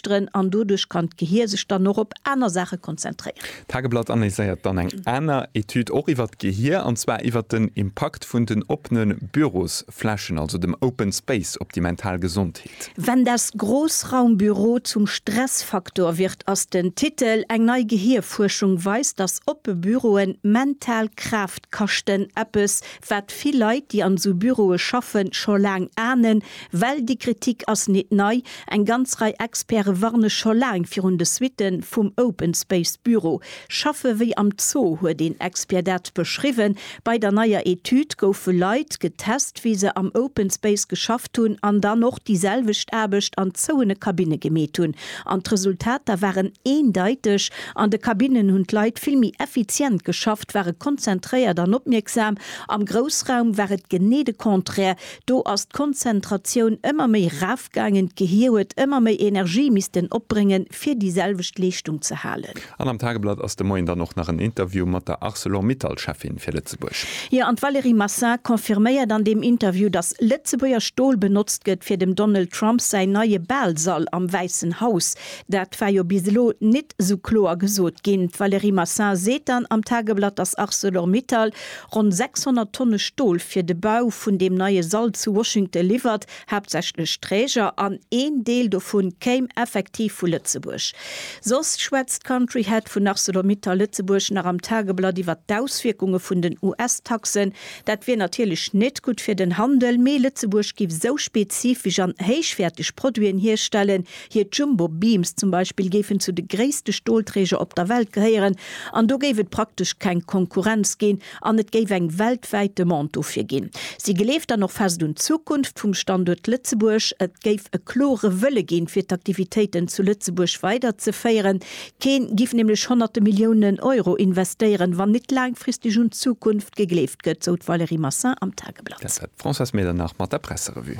dran an doduerch kann d'Gehir sech dann och op aner Saache konzentréieren. D'Tageblatt analyséiert dann eng aner Etüd och iwwert d'Gehir, an zwar iwwert den Impakt vun den oppene Bürosflächen, also dem Open Space, op déi mental Gesondheet. Wenn das Großraumbüro zum Stressfaktor wird ass den Titel. Eng nei Gehirfuerschung weist, dass oppe Büroen mental Kraaft kaschten, eppes wat vill Leit, déi an esou Büroe schaffen, scho laang ahnen, Well déi Kritik ass nit nei, eng ganz Rei Experte warne scho laang virun de Suitten vum Open Space Büro. Schaffe wéi am Zoo huet een Expert dat beschriwwen. Bei der neier Etüd goufe Leit getest, wéi se am Open Space geschafft hunn an dann och déi selwecht Aarbecht an zouene Kabinne gemeet hunn. An d'Resultater waren eendeiteg, An de Kabinnen hunn d'Leit vill méi effizient geschafft, ware konzentréiert an opmierksam. Am Groussraum war et genee de Contraire, Do ass d'Konzentratioun ëmmer méi raafgaangen, d'Gehir huet ëmmer méi Energie missten opbréngen, fir déi selwecht Leeschtung ze halen. An am Tageblatt ass de Moien dann och nach en Interview mat der Arcelor-Mittal-Cheffin fir Lëtzebuerg. Jo, an d'Valérie Massin confirméiert an deem Interview, datt Lëtzebuerger Stol benotzt gëtt, fir dem Donald Trump säin neie Baalsall am Wäissen Haus. Dat war jo bis elo nit esou kloer gesot ginn. D'Valérie Massin seet dann am Tageblatt, datt Arcelor-Mittal Ronn 600 Tonne Stol fir de Bau vun deem neie Sall zu Washington liwwert haaptsächlech Träger an een Deel dovu kéim effektiv vu Lëtzebuerg. Soss schwätzt d'Country Head vun Arcelor-Mittal Lëtzebuerg nach am Tageblatt iwwert d'Auswierkunge vun den US-Taxen. Dat wier natierlech net gutt fir den Handel, mee Lëtzebuerg giff esou spezifesch an héichwäerteg Produiten hierstellen, Hir Jumbo Beams zum Beispill géifen zu de gréisste Stolträger op der Welt gehéieren an do géif et praktesch keng Konkurrenz ginn an et géif eng weltwäit Demande dofir ginn. Si gleeft dann och fest un d'Zukunft vum Standuert Lëtzebuerg. Et géif e klore Wëlle ginn, fir d'Aktivitéiten zu Lëtzebuerg weider ze féieren. Kee giff nämlech honnerte Milliounen Euro investéieren, wann nit laangfristeg un d'Zukunft gegleeft gëtt, sou d'Valérie Massin am Tageblatt. Dat war d'Françoise Medernach mat der Presserevue.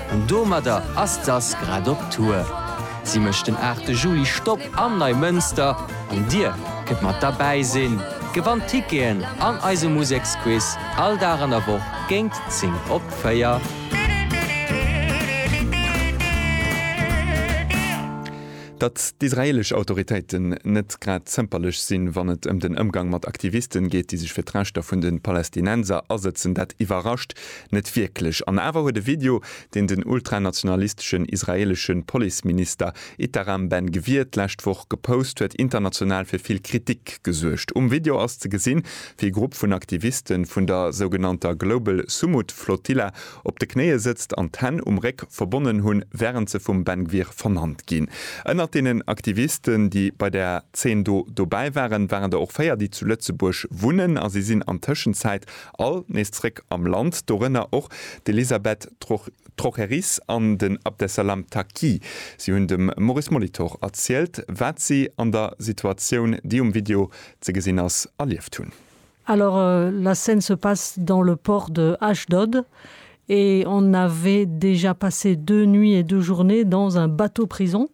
An domadder ass d'Sass grad op Tour. Si mécht den 8 Juli Stopp am Neimënster an dir kënnt mat derbäi sinn, gewannt Ticketen an eise Museksquiz all Dag an der Woch géint 10 op 4. Datt d'israeelesch Autoritéiten net grad zëmperlech sinn, wann et ëm den Ëmgang mat Aktivisten geet, déi sech fir d'Rechter vun de Palästinenser asëtzen, dat iwwerrascht Net wierklech. An awer huet e Video, deen den ultranationalisteschen israeelesche Policeminister Itaram Ben Gvir d'lescht Woch gepost huet, international fir vill Kritik gesuergt. Um Video ass ze gesinn, wéi e Grupp vun Aktivisten vun der sougenannter Global Sumud Flotilla op de Knéie sëtzt an d'Hänn um Réck verbonnen hunn, wärend se vum Ben Gvir vernannt ginn. Ënnert deenen Aktivisten, déi bei der Zeen do dobäi waren, waren der och véier, déi zu Lëtzebuerg wunnen a si sinn an Tëschenzäit All nees zréck am Land, dorënner och d'Elisabeth Trocheris an den Abdesalam Taqi. Si hunn dem Maurice Molitor erzielt, wat si an der Situatioun, déi um Video ze gesinn ass, erlieft hunn. Alors, la scène se passe dans le port de Ashdod et on avait déjà passé deux nuits et deux journées dans un bateau-prison.